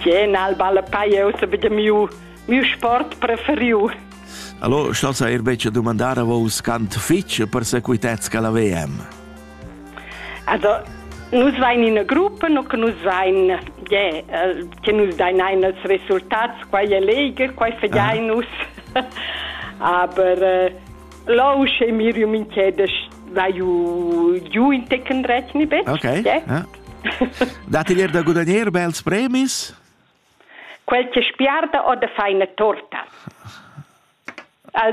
Tgè nal balla paia ussa be da miu miu sport preferiu. Allora, schlassa er becce domandare a vos cant fitch per sequitez che la VM. Also, nus vain in gruppa, no che nus vain, yeah, che nus dain ein als resultats, qua è leger, qua fadiai ah. nus. Aber äh, lo sche Miriam in chedes vai giu in tecken rechne bet. Okay. Ja. Dat ier da gudagnir bels premis? Quel che spiarda o da fai una torta.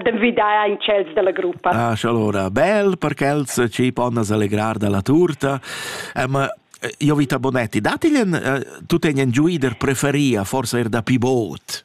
D'envidar in cels della gruppa. Ah, allora, bel perché els ci ponno allegrar dalla torta. Um, io vita Bonetti, datigli, uh, tu tenen giuider preferia, forse er da pivot?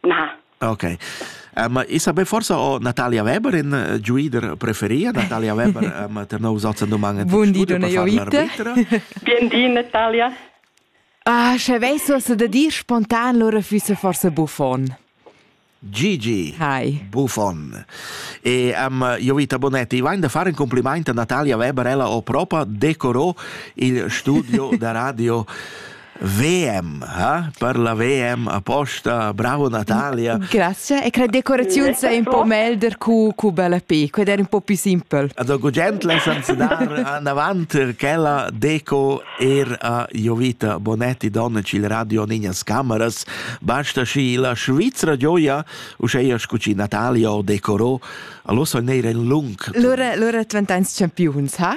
Na. Ok. Uh, ma e saber forsa o Natalia Weber in uh, giuider preferia Natalia Weber um, ter nous ozen domangen Bun di donna Jovita Bien di Natalia Ah, sche veiso se da dir spontan lora füsse forse buffon Gigi Hi Buffon e um, Jovita Bonetti vain da fare un complimaint a Natalia Weber ella o propa decorò il studio da radio VM, ha? Per la VM aposta Bravo Natalia. Grazie e cre decoraziun sei un po' melder cu cu bella pe, qued era un po' più simple. Also gugentla senza dar avanti quella deco er a Jovita Bonetti donna il radio Niñas Cameras, basta schi la Svizzera gioia u sche scuci Natalia o decorò, allora sono nere in lung. Lora lora 20 ans champions, ha?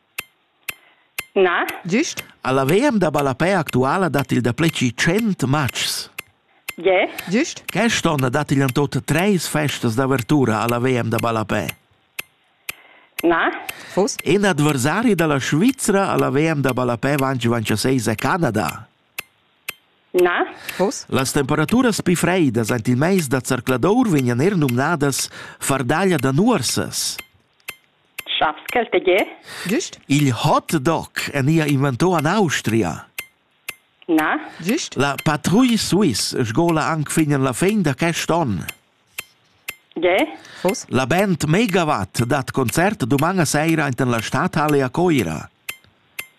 Na. Gist? A la VM da ballapè actuala dat il dapli che tschient matgs. Ge? Gist? Quest onn dat igl en tot treis festas d'avertura alla VM da ballapè. Na. Fos? In adversari dalla Svizra alla VM da ballapè vanci vanchaseis è Canada. Na. Fos? Las temperaturas pli freidas ant il meis da zercladour vegnan er numnadas fardaglia da nuorsas. Schaps ch'el tge? Güst? Il hot dog enia inventò an Austria. Na? Güst? La patrouille suisse sgola anc fin en la fin da quest onn. Ge? Fos? La band Megawatt dat concert duman a seira enten la stadhalle a Coira.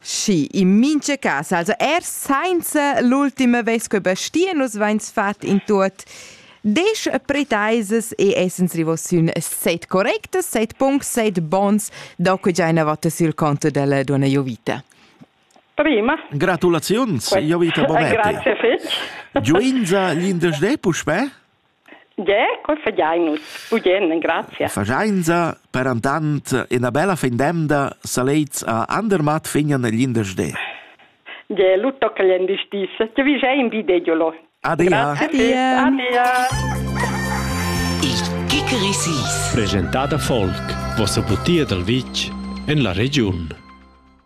Schi, in mincha cas, also er sainza l'ultima vez che Bastien nus vains fat in tuot Desch pretaisas e essens rivos sün set correctas, set punts, set bons, da que già ina vota sul conto della donna Jovita. Prima. Gratulaziuns, Jovita Bovetti. Grazie fitch. Giuinza l'indesch de puspè? Ge, col fagiain nus bugen, grazia. Fagiainsa per andant ina bella fin d'emda salets a Andermatt fignan il l'indersdé. Ge, lu tocca gl'endisdis, che vi già in videgiolo. Adia. Adia. Adia. Il Kikerisis. Presentà da Volk, vossa butia dal vitg en la regiun.